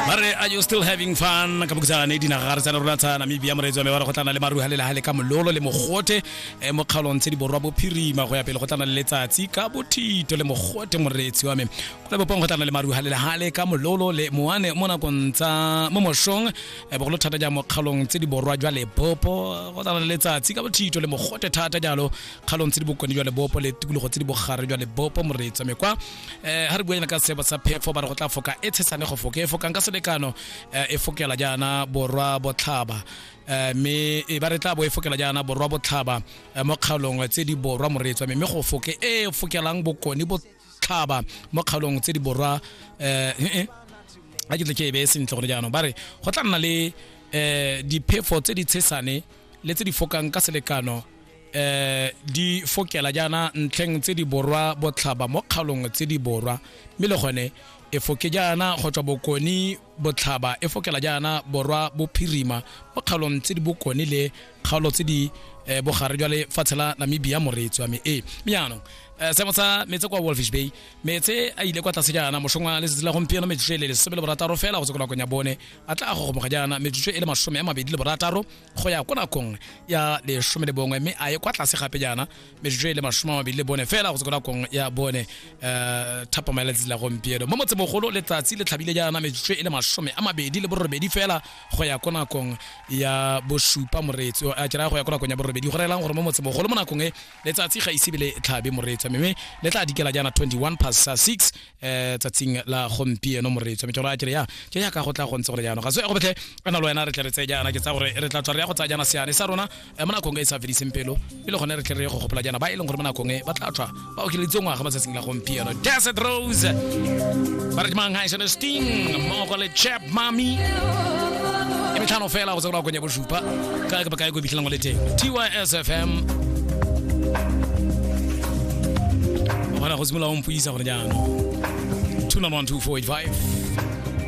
mare are you still having fun ka bokutsanana e dinaga gare tsana rona tsa namibia moreetsi wa me wa re go tlana le maruha le lehale ka mololo le mogote um mo kgaolong tse di borwa bophirima go ya pele go tlana le letsatsi ka bothito le mogote moreetsi wa me go le bopong go tlana le maruha le lehale ka mololo le moane mo nakong tsa mo mošong um bogolo thata jang mo kgaolong tse di borwa jwa lebopo go tlana le letsatsi ka bothito le mogote thata jalo kgaolong tse di bokone jwa lebopo le tikologo tse di bogare jwa lebopo moreetsi wa me kwa eh ha re buela ka seba sa phefo ba re go tla foka e tshesane go foka e fokang ka selekano eh, e fokela jaana borwa botlhaba eh, mme e ba re tla bo e fokela jaana borwa botlhaba eh, mo kgaolong tse di borwa moretswa mme go foke e fokelang bokone botlhaba mo kgaolong tse di borwa eh eh a ke tle ke e beye sentle gore jaanong ba re go tla nna le um diphefo tse di tshesane le tse di fokang ka selekano eh di fokela jaana ntlheng tse di borwa botlhaba mo kgalong tse di borwa mme le gone e foke jaana go tswa bokone botlhaba e fokela jaana borwa bophirima mo kgaolong tse di bokone le kgaolo tse di eh, bogare jwa lefatshe la namibia moreetsi wa me ee mme jaanong eh, seemo sa metse kwa wolfish bay metse a ile kwa tlase jaana mosong wa letsatsi la gompieno metsotso e le lesome le borataro fela go tse ko nakong ya bone a tla a gogomoga jaana metsotso e le masome a mabedi le borataro go ya ko nakong ya lesome le bongwe mme a ye kwa tlase gape jaana metsotso e le masome a mabedi le bone fela go se ko nakong ya bone um thapama ya letsatsi la gompieno mo motsemogolo letsatsi le tlhabile jaana metsotso e le masome a mabedi le borobedi fela go ya ko nakong ya bosupa moreetsi a kera go ya ko nakong ya borobedi go reelang gore mo motsemogolo mo nakong e letsatsi ga ise be le tlhabe moreetsi mme le tla dikela jaana 21 past 6 eh tsatsing la gompieno moreetso mme ke gore a kere ya ke ya ka go tla go ntse gore jaanong ga se go betlhe ana le wena re tle re tseye jaana ke tsa gore re tla tswa re ya go tsaya jaana seane sa rona eh, mo nakong e e sa fediseng pelo e le gone re tle re ye go gopola jaana ba e leng gore mo nakong e ba tla tswa ba okeleditse ngwaga mo tsatsing la gompieno desert rose ba re mang ha e sene sting mmogo le chap mami e metlhano fela go tse go la konya bo Ba ka ba ka go bitlang le teng. TYSFM. Bona go simolola o mpuisa gore jaanong. 291 245